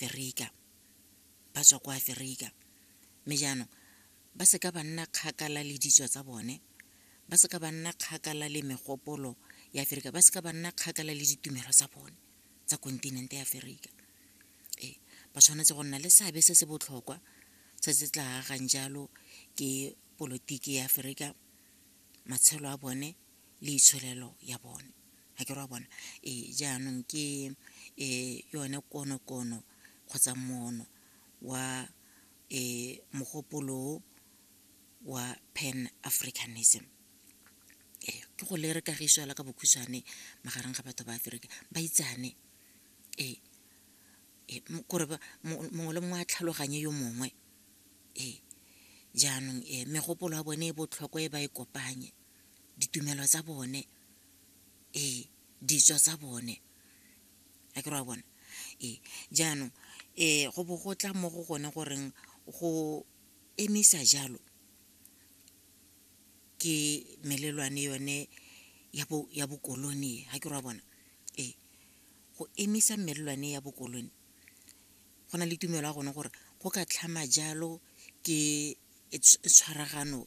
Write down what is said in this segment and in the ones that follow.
Aferika, ba tswa kwa Aferika. Mme jaanong ba seka ba nna kgakala le ditso tsa bone, ba seka ba nna kgakala le megopolo ya Aferika, ba seka ba nna kgakala le ditumelo tsa bone tsa kontinente ya Aferika. Ee, ba tshwanetse go nna le seabe se se botlhokwa se se tla agang jalo ke polotiki ya Aferika, matshelo a bone, le itsholelo ya bone ga ke ra bona e jaanong ke e yone konokono kgotsa mono wa e mogopolo wa pan africanism ke go le re kagiso fela ka bokhutshwane magareng ga batho ba aferika ba itsane ee kore mongwe le mongwe a tlhaloganye yo mongwe ee jaanong megopolo ya bone e botlhokwa e ba e kopanye ditumelo tsa bone ee ditso tsa bone a ke re wa bona ee jaanong um go bo go tla mo go gone goreng go emisa jalo ke melelwane yone ya bokolone ga ke re wa bona ee go emisa melelwane ya bokolone go na le tumelo ya gone gore go ka tlhama jalo ke tshwaragano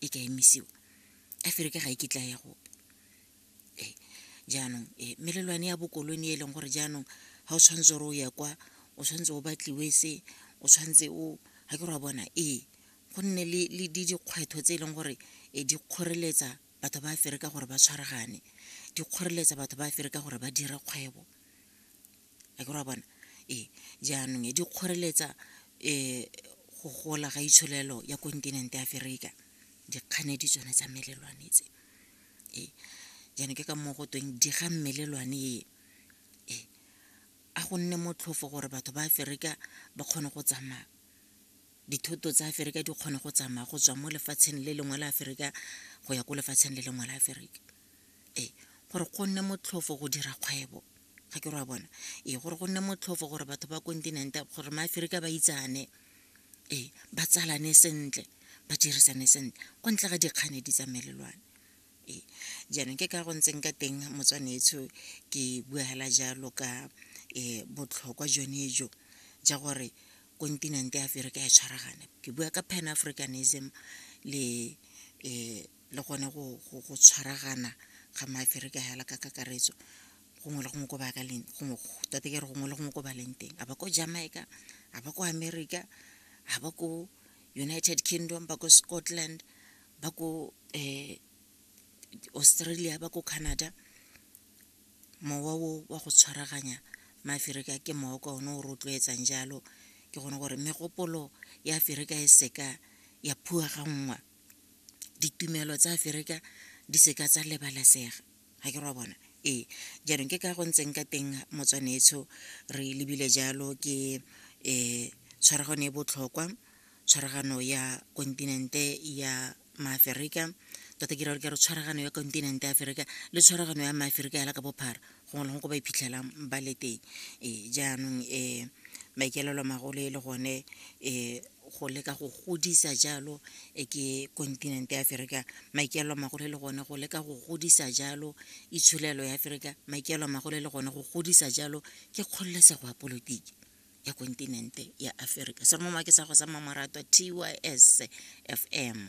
e ka emisiwa a fere ke ga e kitla ya gope ee jaanong ee melelwane ya bokolone e leng gore jaanong ga o tshwanetse gore o ya kwa o tshwanetse o batliwe se o tshwanetse o ga ke re wa bona ee go nne le dikgwetlho tse e leng gore e di kgoreletsa batho ba fere ka gore ba tshwaragane di kgoreletsa batho ba fere ka gore ba dire kgwebo a ke ra bona ee jaanong e di kgoreletsa um go gola ga itsholelo ya kontinente ya aferika dikganedi tsone tsa melelwane tse ee jaanong ke ka moo go tweng di ga melelwane e ee a go nne motlhofo gore batho ba aferika ba kgone go tsamaya dithoto tsa aferika di kgone go tsamaya go tswa mo lefatsheng le lengwe la aferika go ya ko lefatsheng le lengwe la aferika ee gore go nne motlhofo go dira kgwebo ga ke re wa bona ee gore go nne motlhofo gore batho ba kontinente gore maaferika ba itsane ee ba tsalane sentle ba dirisane sentle kwa ntle ga dikgane di tsamelelwane ee jaanong ke ka go ntseng ka teng motswanetsho ke bua fela jalo ka um botlhokwa jone jo ja gore kontinente ya aferika ya tshwaragane ke bua ka pan africanism le um le gone go tshwaragana ga maaferika hela ka kakaretso gongwe le gongwe ko ba ka leng gongwe tota ke re gongwe le gongwe ko ba leng teng a ba ko jamaica a ba ko america a ba ko united kingdom ba ko scotland ba ko um australia ba ko canada mowa o wa go tshwaraganya maaferika ke mowa ka one o rotloetsang jalo ke gone gore megopolo ya aferika e seka ya phua ga nngwa ditumelo tsa aferika di seka tsa lebalesega ga ke ra bona ee jaanong ke ka go ntseng ka teng motswanetsho re lebile jalo ke um tshwaragano e botlhokwa tshwaragano ya kontinente ya maaferika tota ke ra gore ke re tshwaragano ya kontinente ya aferika le tshwaragano ya maaferika ya la ka bophara gongwe le gongwe ko ba iphitlhelang ba le teng ee jaanong um maikaelelo a magolo e le gone um go leka go godisa jalo e ke kontinente ya aferika maikaelelo a magolo e le gone go leka go godisa jalo itsholelo ya aferika maikaelelo a magolo e le gone go godisa jalo ke kgololesego ya polotiki ya kontinente ya aferika sere mo make sa go sa mmamoratwa tys f m